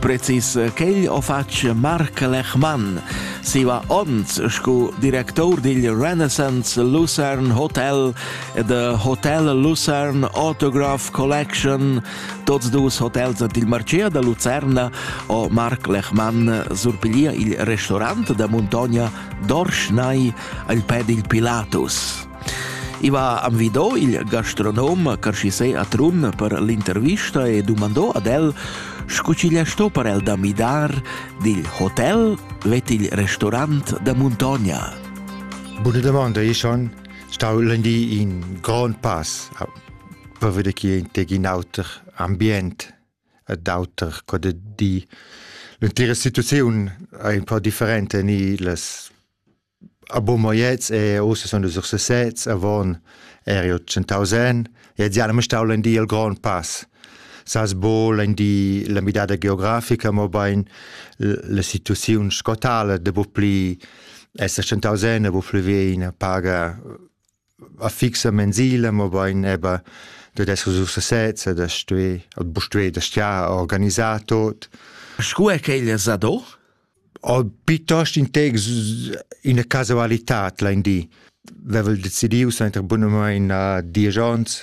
Precis quel ho fatg Marc Lechmann. Siva ons scu director digl Renaissance Lucerne Hotel e de Hotel Lucerne Autograph Collection, tots dus hotels dil Marchea da Lucerna, ho Marc Lechmann surpiglier il restaurant da Montogna Dorschnai al pè dil Pilatus. I va envidò il gastronom Carschisei a Trun per l'intervista e dumandò ad el scu chi gli sto per el da midar dil hotel vet il restaurant da Muntogna. Bune domanda, io son stau lundi in grand pass per vedere chi è in teg in auter ambient ed auter co de di. L'intera situazione è un po' differente ni les A Bumoyets e ussa sun nus ursesets, avon eri tschentaus en e gia l'han stau in di il grond pass. Sas buca in di la midada geografica, mobein la situaziun sco tala, da bu pli esser tschentaus en, da bu pli vein a paga a fixa mensila, mobain eba dad esser sur sesezza, da stuer, bu stuer da stiar organisar tot. Scu è quella sado? O piuttost in tec ina casualità, lein di. Vevel decidiu sainter bunamain a diesch onns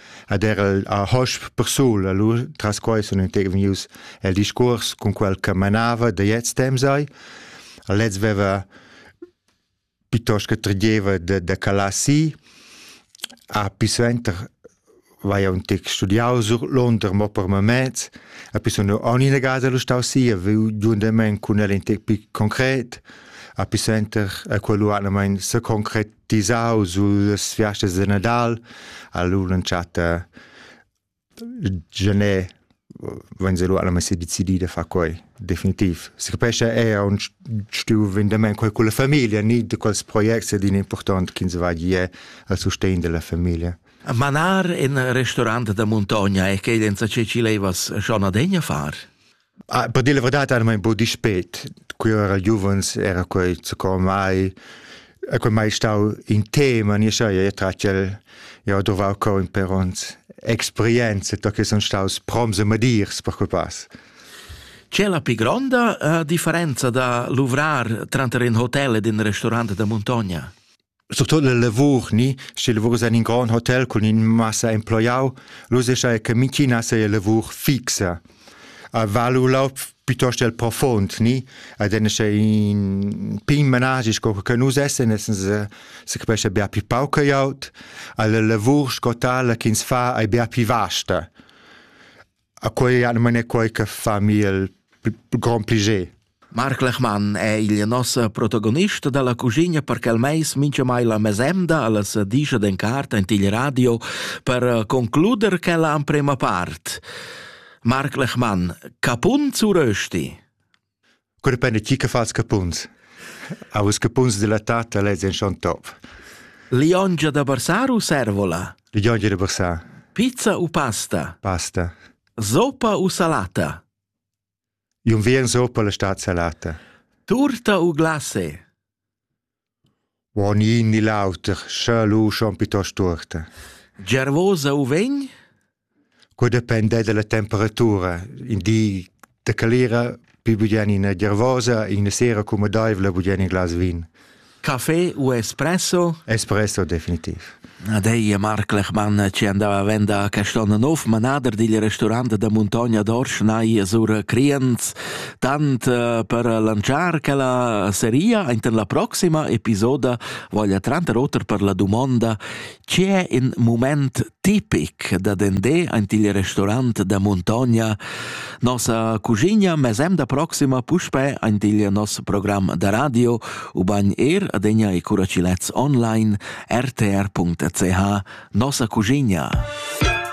Ed era a hosp persul, allura tras quai sono vegnius el discurs con quel che manava da jetzt dem sei. Lez veva piuttosto che tredieva da, da Calassi, a più suenter vai un tic studiau sur Londra mo per moment, a più sono ogni negata lo stau sia, viu giundament con el in tic più concret, a più senter a quello anamain se concret disau sullas fiastas de Nadal, allura entschatta genè vegn se lu alla messa decidida fa quei definitiv si capescha è un stiu vendament quei con la famiglia ni de quels projects din important ch'ins va gie al sustegn della famiglia Manar in restaurant da montagna è che densa ce ci levas schon adegna far Ah, per dir la verità, era un po' dispet. Qui era giovens, era quei secondo mai e quei mai stau in tema, ni scha ia tratgel ia ho dovau coin per ons experienze, to che son staus proms e madirs per quei pass. C'è la più gronda uh, differenza da luvrar tranter in hotel ed in restaurant da montagna? Surtut la lavur ni, sche lavurs en in grond hotel cun in massa emploiau, l'usescha che mintgina seia lavur fixa. A val u laud piuttosto il profond, ni? Ed en sche in pign managi sco che nus essen, essen se, se capesce bia pli pauc che aut, alla lavur sco tala ch'ins fa ei bia pli vasta. A quei anima è quei che fa mi il grand piacer. Marc Lechmann è il nostro protagonista della cucina perché il mais mincha mai la mesemda alla sadicia den carta in til radio per eh, concluder quella amprema part. Marc Lechmann, capun zu rösti? Cura penna ti che fas capuns? Aus capuns della tata lez en schon top. Liongia da barsar u servola? Liongia da barsar. Pizza u pasta? Pasta. Zopa u salata? Un vien zopa la stat salata. Turta u glase? Buon in ni l'auter, scha lu schon piuttost tuorta. Gervosa u vegn? Que depende dalla temperatura. In di da calira pi bugen ina gervosa, ina sera cumodaivla bugen in glas vin. Caffè u espresso? Espresso definitiv. Ad ei è Marc Lechmann che andava vend a Caston Nov, manader digl restaurant da Muntogna d'Orsch nai sur Criens, tant eh, per lanciar quella seria enten la proxima episoda voglia tranter oter per la dumonda che è in moment tipic da dende ant il restaurant da Muntogna Nossa cuschigna mesem da proxima puspe ein digl nos program da radio ubain er adegna e curacilets online rtr.ch nossa cuschigna.